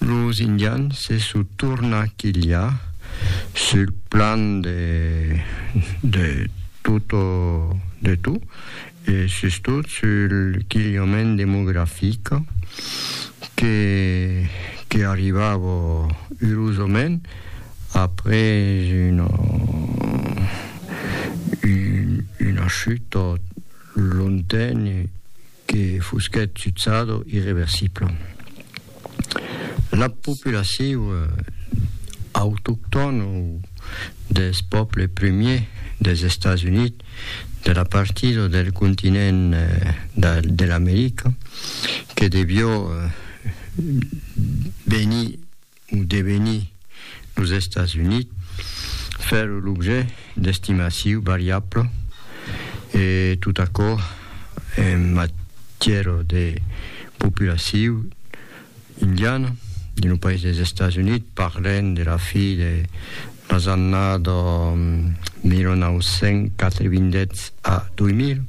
Los Indians se sò torna quilha sul plan de de tota de tot e sustot sul quilhament demografic que que arribava urosament après una una chuta longtemps que fusquèt sutzado irreversible. La populaciu autoctòna o deth pòble premier des Estats Units de la partida del continent de l'America que devió venir Un devenir los Estats Units fèron l'objet d'estimaciu variabla e tot aquò en matièra de populaciu indiana dins lo país dels Estats Units, parlèm de la fi de las annadas 1990 a 2000.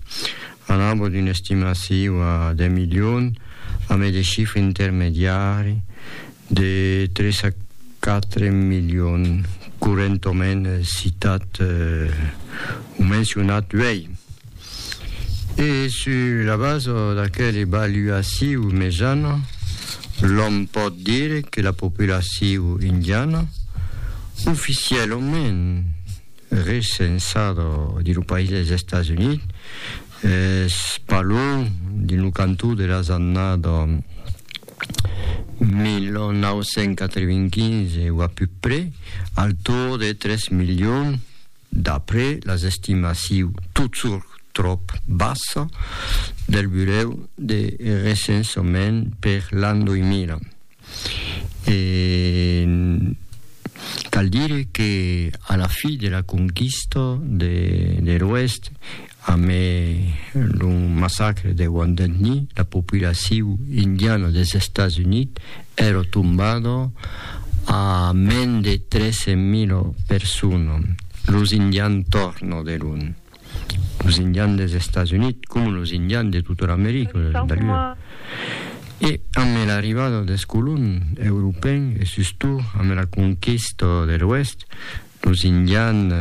Un nombre d'una estimaciu a deu milions amb e de chifre intermediari de tres a quatre milions correntoment citat o mencionat uèi. E sus la basa d'aquela evaluaciu mejana, l'òm pòt dire que la populaciu indiana oficièlament recensada dins lo país dels Estats Units, es pas luènh dins lo cantó de las annadas 1995 o a puc près, al torn de 3 milions, d'après las estimaciu totjorn tròp bassa del Burèu de Recensament per l'an 2000. e cal dire que a la fi de la conquista de l'Oèst, amé lo massacre de Wounded Knee, la populaciu indiana des Estats Units èra tombada a mens de 13.000 personas, los indians torna de lon. los indians des Estats Units coma los indians de tota l'America del Nòrd. E ambe l'arribada des colons europèn e sustot ambe la conquista de l'Oèst, los indians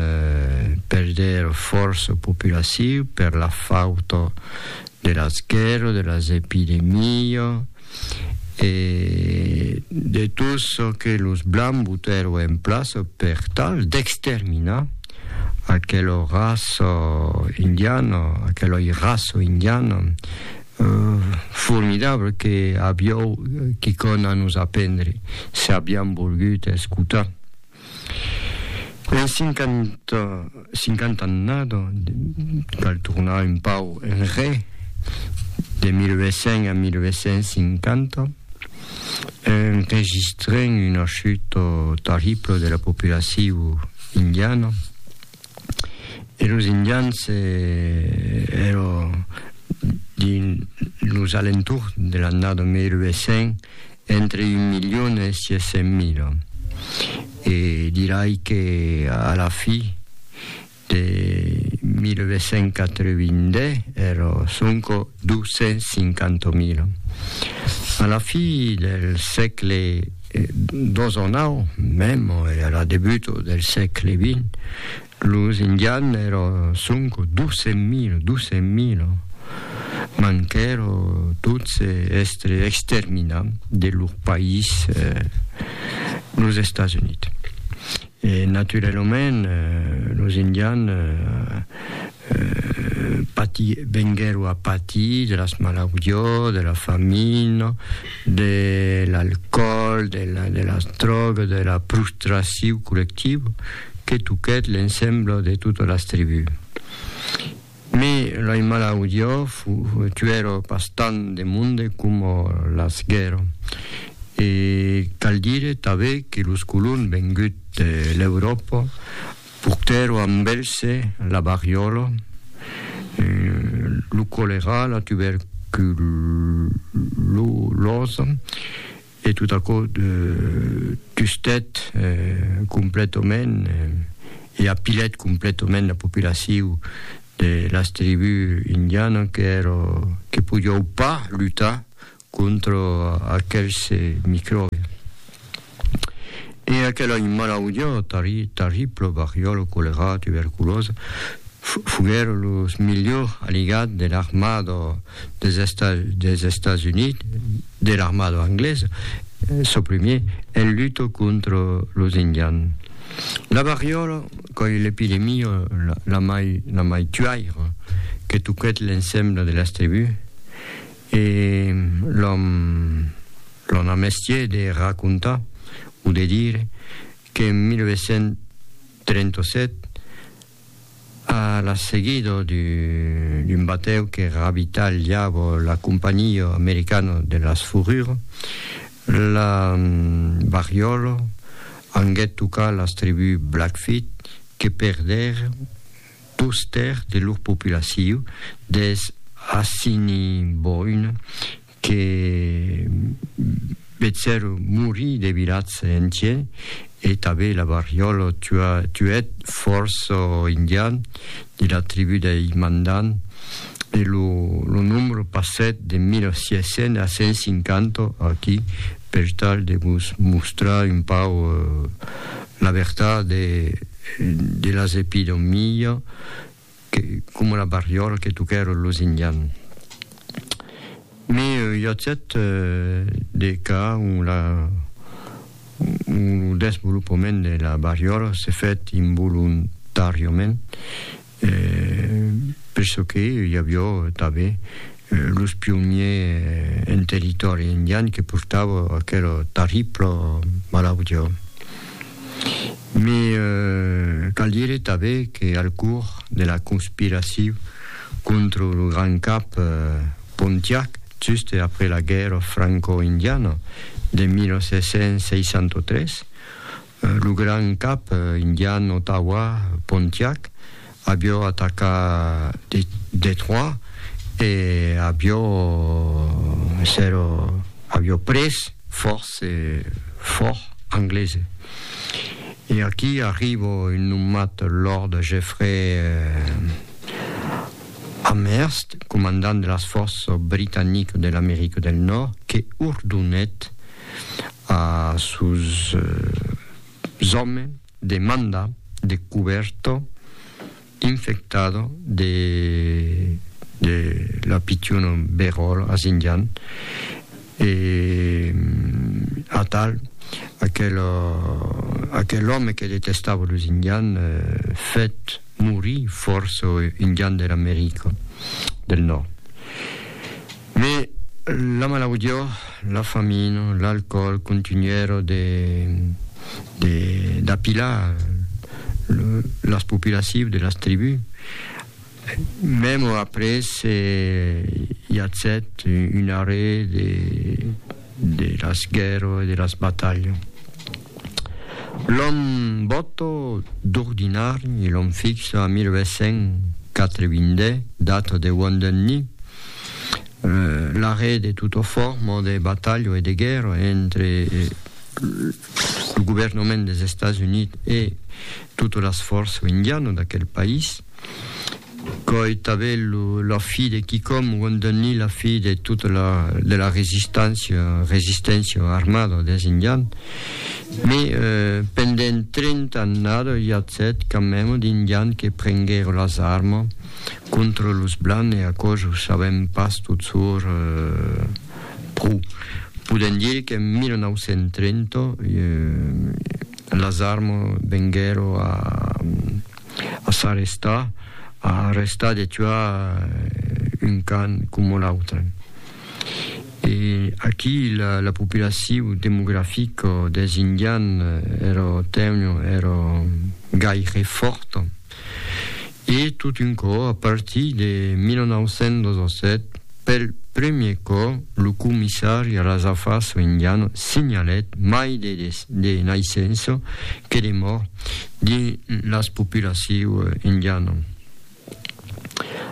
perdèr fòrça populaciu per la fauta de las guèrras, de las epidemias, e de tot çò que los blancs botèro en plaça per tal d'exterminar aquela raça indiana, aquela raça indiana euh, formidable que avió quicòna a nos aprendre, se aviam volgut escotar. Mai cinquant'annada cal tornar un pauc enrè, de 1800 a 1850, enregistrèm una chuta terribla de la populacion indiana. e los indians ero dins los alentours de l'annada 1800 entre un milion e 600 mila e dirai que a la fi de 1882 ero sonco 250.000. A la fi del sègle xix, mèm a la debut del sègle xx, los indians èra sonc 200.000, 200.000. Manquèron tots èstre exterminats de lor país, los Estats Units. E naturalament los indians Pati, venguèro a patir de las malaudiós, de la famina, de l'alcòl, de de las drògas, de la prostraciu collectiva que toquèt l'ensembla de totas las tribús. Me lei malaudiós tuèro pas tant de monde coma las guèrra. E cal dire tanben que los colons venguts de l'Euròpa Portèro a Mbèlse la variòla, lo colerà, la tuberculòsa e tot aquò tustèt completament e apilèt completament la populaciu de las tribús indianas que podiou pas lutar contra aquels micròbi. E aquel ai malaudia tarribla, variòla, colerà, tuberculosa, foguèron los milhors aligats de l'armada dels Estats Units, de l'armada anglesa, çò primièr, en luta contra los Indians. La variòla qu'ai l'epidemia la mai tuaira que toquèt l'ensemble de las tribús, E l'òm l'òm a mestier de racontar o de dire qu'en 1837, a la seguida d'un batèu que ravitalhava la Companhia Americana de las Fourrures, la barriòla anguèt tocar las tribús Blackfeet que perdèron dos tèrç de lor populacion des Assiniboine que vetsèron morir de vilatge entier e tanben la variòla tuèt fòrça indian de la tribú dei Mandan e lo nombre passèt de 1.600 a 150 aquí per tal de vos mostrar un pauc La vertat e de las epidemia que coma la barriola que tocèron los indian. Mais i a tet de cas ont la ont lo desvolopament de la barriola se fèt involuntàriament. E per çò que i avió tanben los pionniers en territòri indian que portava aquela tarribla malautia. Mai cal dire tanben que al cors de la conspiracion contra lo Grand Cap Pontiac juste après la guèrra franco-indiana de 1763, Lo grand cap indian Ottawa, Pontiac, avió atacat Detroit e avió èsser avió pres fòrts e fòrt anglese. E aquí arrivo un nomat Lord Jeffrey Amherst, comandant de las fòrças britaniques de l'America del Nòrd, que ordonèt A sus zòme de manda de cuberto infectado de de la pichona beròla a Xinjiang e atal aquel aquel òme que detestava lo Xinjiang fèt morir fòrça Indian de l'America del Nòrd. Mes la malaudió, la famina, l'alcòl contunhèron de de d'apilar lo las populacius de las tribus. Mèmo après se i atzèt un arrè de de las guèrras e de las batalhas. L'an bòta d'ordinari e l'an fixa a 1880, data de Wan Dun Ni, l'arrèst de tota forma de batalha e de guèrra entre lo governament dels Estats Units e totas las fòrças indianas d'aquel país. Qu'òi tabèl la fi de quicòm guandani la fi de tota la de la resistància, resistència armada des indians, me pendent 30 annada i at 7 camèm d'indians que prenguèro las arma contra los blancs e aquò jo sabèm pas totsor pro podèm dire qu'en 1930 las arma venguèro a A s'arrestar, a arrestar de tuar un can coma l'autre. E aquí la populacion demografica des Indians èra tènue, èra gaire fòrta. E tot un cò, a partir de 1917, pel premier cò, lo comissari Razafaso Indiano signalèt mai de naissença que de mòrts de las populaciu indiana.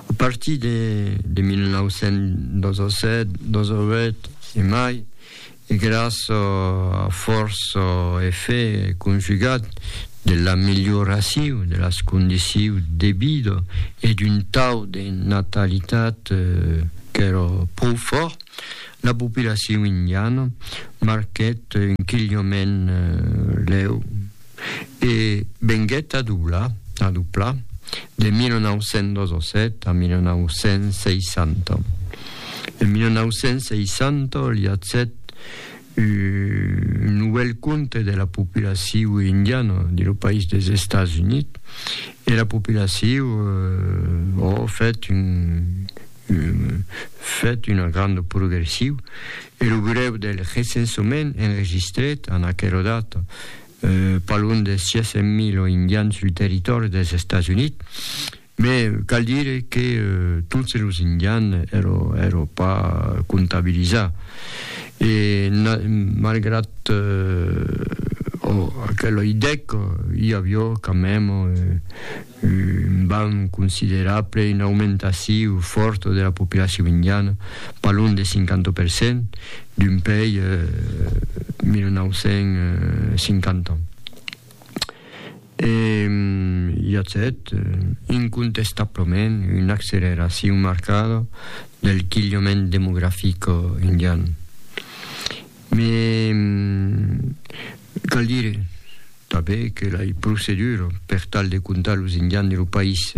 A partir de 1927, 28 e mai, e gras a fòrç efèct conjugat de l'amelioraciu de las condiciu de vida e d'un tau de natalitat qu'èra pro fòrt, la populaciu indiana marquèt un quilhament lèu. E venguèt a doblar, a doblar, de 1907 a 1960. En 1960 liatzèt un novèl compte de la populaciu indiana de lo país des Estats Units e la populaciu o fèt un, fèt una granda progressiu E lo grèu del recensament enregistrèt en aquela data pas luènh de 600.000 indians sul territòri dels Estats Units, me cal dire que totes los indians èran pas comptabilizats. E malgrat aquela idèca, i aviá quand mème. Un bam considerable, una aumentaciu fòrta de la populacion indiana, pas lon de 50 per cent, d'un pei 1950 ans. E i a cet, incontestablament, una acceleracion marcada del quilhament demografic indian. Me cal dire tanben que la procedura per tal de comptar los indians de lo país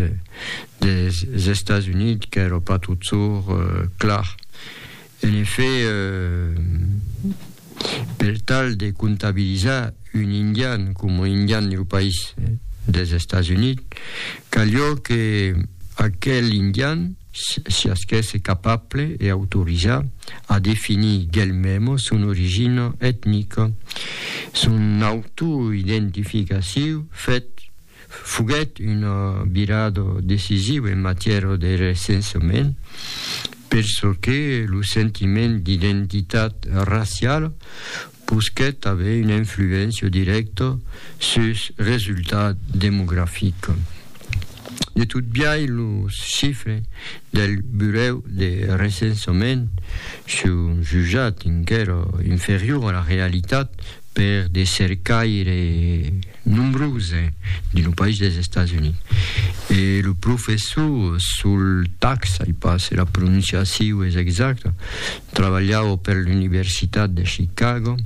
des Estats Units qu'èra pas totjorn clar. En efèt, per tal de comptabilizar un indian coma indian de lo país des Estats Units, calió que aquel indian, siás qu'èsse capable e autorizat a definir d'elmem son origina etnica, son autoidentificaciu fèt foguèt una virada decisiva en matièra de recensament, per çò que lo sentiment d'identitat raciala Posquèt aver una influéncia dirècta sus resultat demografic. De tot biais, los chifres del Burèu de Recensament son jutjats enquèra inferiors a la realitat per de cercaires nombroses dins lo país dels Estats Units. E lo professor Sol Tax, ai pas se la prononciaciu es exacta, Trabalhau per l'Universitat de Chicago,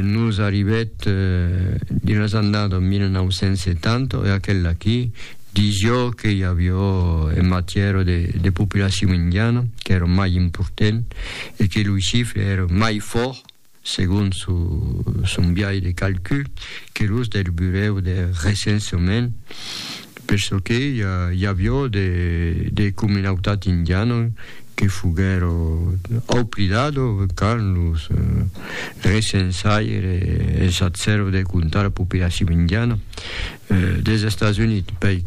nos arribèt dins las annadas 1970 e aquel'aquí disió que i avió en matièra de populacion indiana qu'èra mai important e que loi chifre èra mai fòrt segon son biais de calcul, que los del burèu de recensament, per çò que i avió de comunautat indiana que foguèro oblidado quand los recensaires es atzèro de comptar la populacion indiana, Des Estats Units pei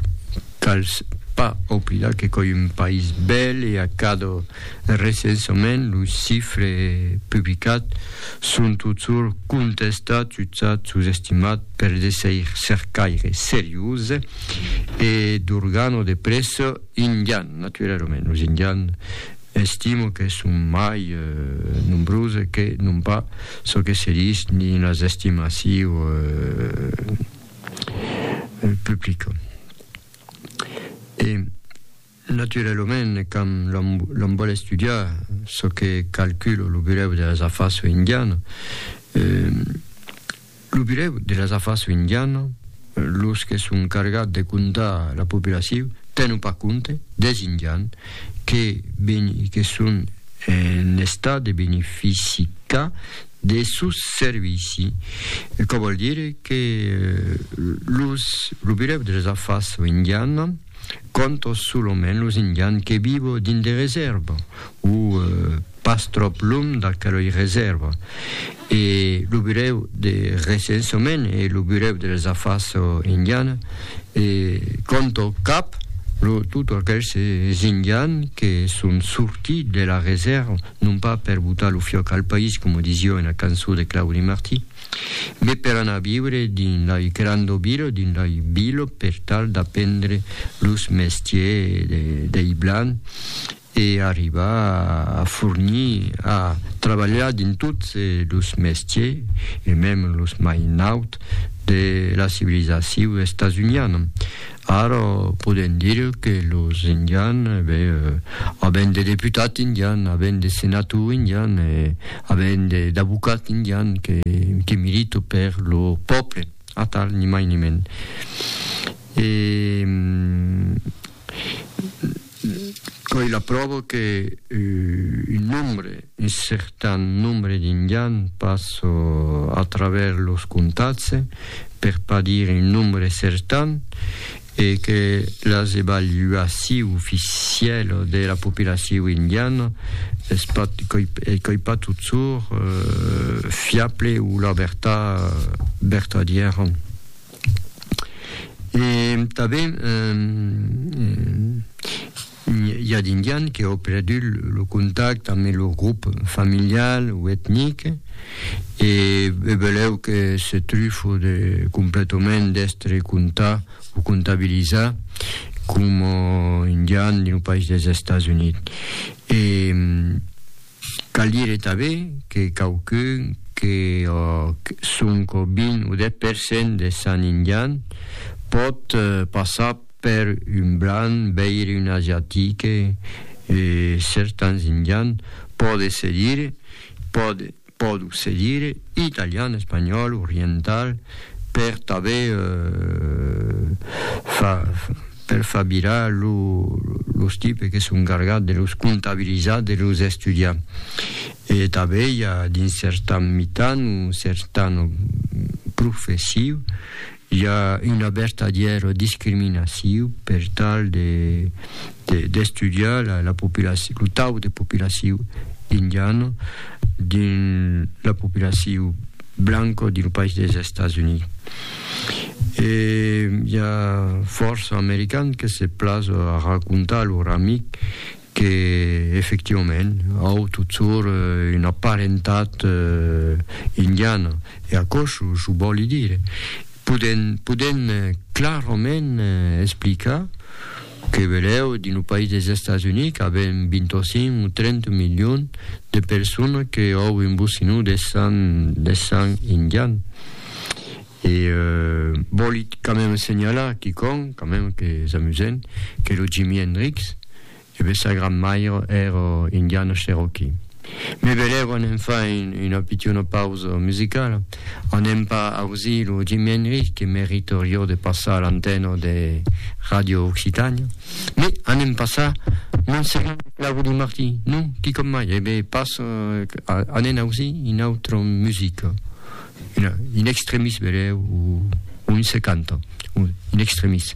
cals pas oblidar que coi un país bèl e a cada recensament los chifres publicats son totjorn contestats, jutjats, sosestimats per de cercaires serioses e d'organo de prèssa indians, naturalament, los indians estimo que son mai nombroses que non pas çò que se ditz dins las estimacions. publica. E, naturalament, quand l'on, l'on vòl estudiar çò que calcula lo Burèu de las Afars Indianas, eh, lo Burèu de las Afars Indianas, los que son cargats de comptar la poblacion, tenon pas compte des Indians que, que son en estat de beneficicar de sos servici, çò vòl dire que los lo birèu de las afas indiana cònta solament los indians que vivo dins de resèrva o pas tròp lum d'aquelei resèrva e lo birèu de recensament e lo birèu de las afas indiana cònta cap lo tot aquels indians que son sortits de la resèrva non pas per botar lo fiòc al país, coma disió ena cançó de Claudi Martí, mes per anar a viure dins lei grandobilo, dins lei bilo, per tal d'apendre los mestiers dei blan e arribar a fornir, a trabalhar dins tots los mestiers, e mem los mai nauts, de la civilizaciu estasuniana. Ara podèm dire que los indians, e ben, avèn de deputats indians, avèn de senators indians, e avèn d'avocats indians que, que militan per lo pòble, atal, ni mai ni mens. E. Coi la pròva que un nombre, un certan nombre d'Indians pas a travèrs los comtats, per pas dire un nombre certan, e que las evaluaciu oficièla de la populaciu indiana es pas, coi pas totsur, fiable o la vertat vertadièra. E tanben i a d'Indians que ò perdut lo contact ambe lor grop familial o etnic e beleu que se trufo de completament d'estre comptar o comptabilizar coma Indians dins lo país dels Estats Units. Cal dire tanben que quauqu'un que òc 5 o 20 o 10 per cent de sant indian pòt passar per un blanc, veire un asiatique e certans indian pòde se dire, pòde, pòdo se dire, italian, espanhòl, oriental per tanben far per far virar los tipes que son gargats de los comptabilizar de los estudiar. E tanben i a d'un certan mitan o certan professiu i a una vertadièra discriminaciu per tal de d'estudiar la la populaciu lo tau de populaciu indiana dins la populaciu blanca dins lo país dels Estats Units. E i a fòrça americans que se plas a racontar a lor amic que, efectivament, au totjorn una parentat indiana, e aquò çò vòli dire. Podèm clarament explicar Que velèu dins lo país des Estats Units qu'avèm 25 o 30 milion de personas que òu un bocinó de sang de sang indian e vòli quand même senhalar quicòm quand même que es amusent que lo Jimi Hendrix e be sa grand maire èra indiana cherokee. Me vedèron en far una pichona pausa musicala, anem pas ausir lo Jimi Hendrix que meritorió de passar a l'antena de Ràdio Occitània, me anem passar Montserrat e Claudi Martí, non? Quicòm mai, e be pas anem ausir una autra musica, un extremis vedèu, o un se canta, un extremis.